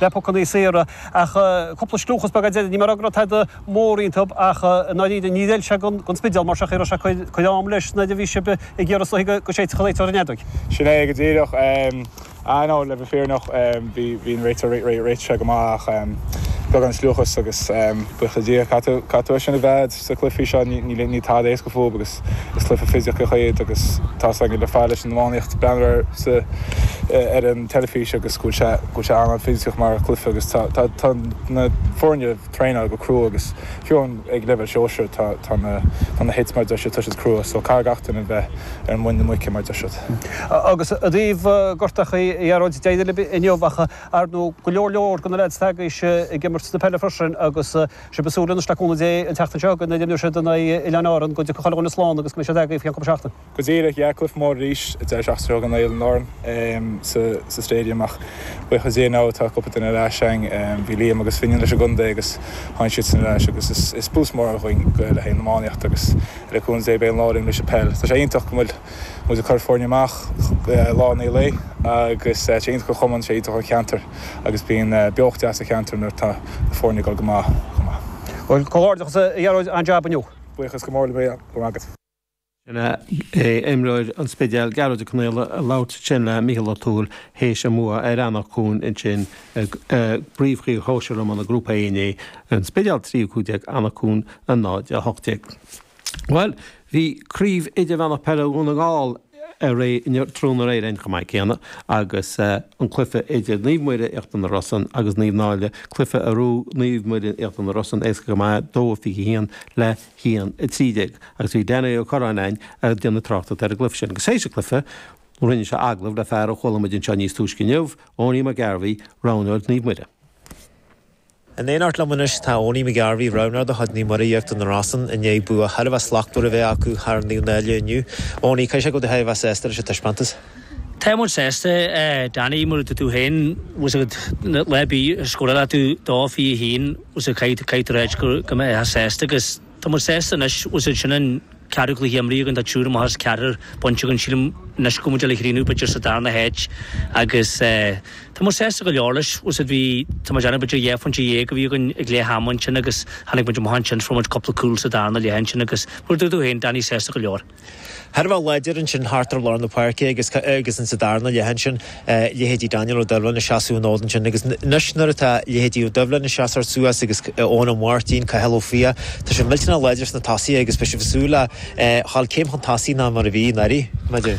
le pocannaí saora, ach cúpla scliúchas beag ag an deireadh, ní móide go raibh tada mór iontub ach, ndáiríre, níor fheil sé don Spidéal mar seach é raibh sé ag cur am leis nuair a bhí sibh ag iarraidh is dóigh go séidfeadh réiteoir an fheadóig. Sin é, go díreach. Aye, no, le bheith fírinneach, bhí an réiteoir réitithe go maith ach beagán scliúchas agus buíochas le Dia, caithfidh tú é sin a bheith agat. Sa chluiche freisin ní tada é is go fóill agus is cluiche fisiceach iad agus tá sé sin ag gabháil leis an iománaíocht. Breathnaigh ar sa ar an teilifís agus go bhfuil sé an-an fisiceach mar chluife agus tá na foirne traenáil go crua agus fiú an ag leibhéal sóisir tá na hits mar deir siad ag tíocht crua so caithfidh gach duine bheith ar mhuin na muice mar deir siad. Agus i dtaobh gortuithe a Ghearóid d'éirigh libh inniu ach ar ndóigh go leor leor de na leaids atá agaibhse ag imirt na peile freisin agus. Sea, beidh súil le cúnamh Dé an tseachtain seo go n-oileann siad in aghaidh Oileáin Árann, go dtiocfaidh chuile dhuine slán agus go mbeidh siad agaibh faoi cheann cúpla seachtain. Go díreach, yeah, cluife mór arís, an deireadh seachtaine seo chugainn in aghaidh Oileáin Árann sa Stadium ach buíochas Dé now tá cúpla duine ar ais againn. Bhí Liam agus Finian leis an gcontae agus tháinig siadsan ar ais agus is boost mór againn le haghaidh an iománaíocht agus le cúnamh Dé beidh an lá linn leis an peil. Tá sé iontach go bhfuil. muid ag cur foirne amach lá i ndiaidh lae agus tá sé iontach don chumann, tá sé iontach don cheantar agus bíonn beocht deas sa cheantar nuair atá na foirne ag dul go maith chomh maith. Bhuel, comhghairdeachas a Ghearóid, an-jab inniu! Buíochas go mór libh, go raibh maith agat. Sin é imreoir an Spidéil, Gearóid Ó Conaola ag labhairt ansin le Micheál Ó Tuathail théis a mbua ar Anach Cuain ansin i bpríomhchraobh shóisir iomána Grúpa 1A, An Spidéal 3-15 Anach Cuain 0-18. Bhuel, Bhí Craobh Idirmheánach Peile Dhún na nGall ann tráthnóna aréir chomh maith céanna agus an cluiche idir Naomh Muire, Íochtar na Rosann, agus Naomh Náille, cluiche a raibh Naomh Muire, Íochtar na Rosann, éasca go maith, 2-21 le 1-13, agus bhí Danny Ó Curráin ann ag déanamh tráchtaireacht ar an gcluiche sin. Agus théis an chluiche, rinne sé agallamh le fear a chuala muid anseo níos túisce inniu, Eoiní McGarvey, roghnóir Naomh Muire. In éineacht liom anois tá Eoiní McGarvey, Roghnóir de chuid Naomh Muire Íochtar na Rosann i ndiaidh bua thar a bheith slachtmhar a bheith acu thar Naomh Náille inniu. Eoiní, caithfidh sé go bhfuil tú thar a bheith sásta leis an taispeántas? Tá muid sásta, a Danny, mar a dúirt tú féin, tá a fhios agat, lá ar bith a scórálfaidh tú 2-21 caithfidh tú a rá go mbeadh sásta agus. Tá muid sásta anois, tá a fhios agat, sin an ceathrú cluiche imrithe againn, tá triúr amach as ceathrar bainte againn, sílim anois go bhfuil muid le críochnú b'fhéidir sa darna háit agus eh tá muid sásta go leor leis, tá a fhios agat, bhí, tá mé ag déanamh b'fhéidir dhá phointe dhéag a bhí againn ag leath ama ansin agus tháinig muid amach ansin, fuair muid cúpla cúl sa darna leath ansin agus mar a dúirt tú féin, Danny, sásta go leor. thar a bheith láidir ansin thart ar lár na páirce agus agus ins an darna leath ansin leithéidí Daniel Ó Doibhlin ag seasamh an fhóid ansin agus anois nuair atá leithéidí Ó Doibhlin ag seasamh suas agus Eoin Ó Máirtín, Cathal Ó Fiaich, tá siad millteanach láidir sna tosaithe agus beidh sibh ag súil le ghabháil céim chun tosaigh ná mar a bhí anuraidh b'fhéidir.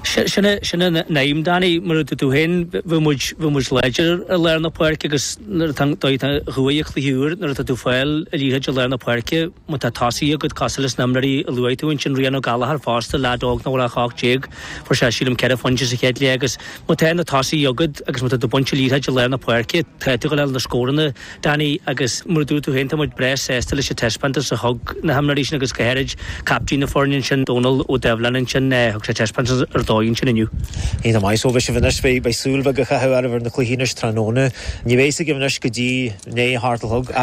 Sin é sin an aidhm Danny, mar a dúirt tú féin bhí muid bhí muid láidir i lár na páirce agus nuair atá dóigh a chuaigh an cluiche úr nuair atá tú ag fáil an liathróid i lár na páirce, Má tá tosaithe agat, cosúil leis na himreoirí a luaigh tú, ansin Rian O'Gallagher fosta, leaid óg nach bhfuil ach 18, fuair sé sílim ceithre phointe sa chéad leath agus má tá na tosaithe agat agus má tá tú ag baint an liathróid i lár na páirce, tá tú chun fháil na scóranna, Danny, agus mar a dúirt tú féin, tá muid breá sásta leis an taispeántas a thug na himreoirí sin agus go háirid caiptín na foirne ansin, Dónal Ó Doibhlin ansin, thug sé taispeántas ar dóigh ansin inniu. Iontach maith, so beidh sibh anois, b'fhéidir súil bheag a chaitheamh ar na cluichí anois tráthnóna. Ní bheidh 's agaibh anois go dtí i ndiaidh a hocht a chlog.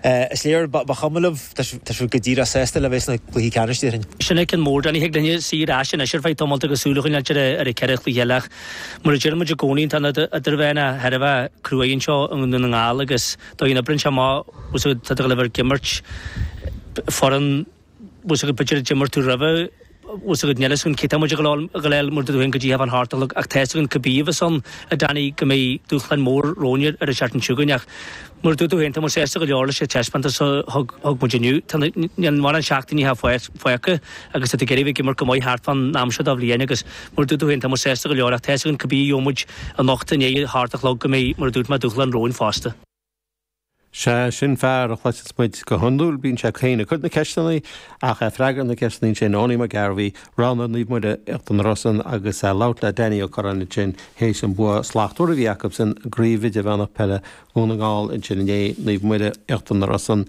Is léir, ba chuma libh, tá sibh go díreach sásta le bheith sna cluichí ceannais, déarfainn. Sin an ceann mór Dan. Ó thig linne suí ar ais anois ar feadh tamaill agus súil a choinneáilt ar an 4 chluiche eile ach, mar a deir muid i gcónaí, tá an idirmheánach thar a bheith cruaidh anseo i nDún na nGall agus dóigh a n-oibríonn sé, tá 's agad, tá tú ag gabháil a bheith ag imirt foireann. bhfuil 's agad b'fhéidir a d'imir tú roimhe, bhfuil 's agad níl 's agad cé tá muid ag gabháil a fháil mar a dúirt tú féin go dtí i ndiaidh a hocht a chlog ach tá 's agad cibé a bheas ann a Danny go mbeidh dúshlán mór romhainn ar an seachtain chugainn ach mar a dúirt tú féin tá muid sásta go leor leis an taispeántas a thug muid inniu. Tá na mórán seachtainí fágtha agus tá tú ag iarraidh a bheith ag imirt go maith thart fán am seo den bhliain agus mar a dúirt tú féin tá muid sásta go leor ach tá 's agad cibé a gheobhaidh muid anocht i ndiaidh a hocht a chlog go mbeidh mar a dúirt mé dúshlán romhainn fosta. Sé sin fear a chloiseas muid go hiondúil, bíonn sé féin ag cur na ceisteanna ach é ag freagairt na gceisteanna. Ansin Owenie McGarvey, roghnóir Naomh Muire Íochtar na Rosann agus é ag labhairt le Danny Ó Curráin ansin théis an bua slachtmhar a bhí acu san gCraobh Idirmheánach Peile Dhún na nGall ansin inné, Naomh Muire Íochtar na Rosann.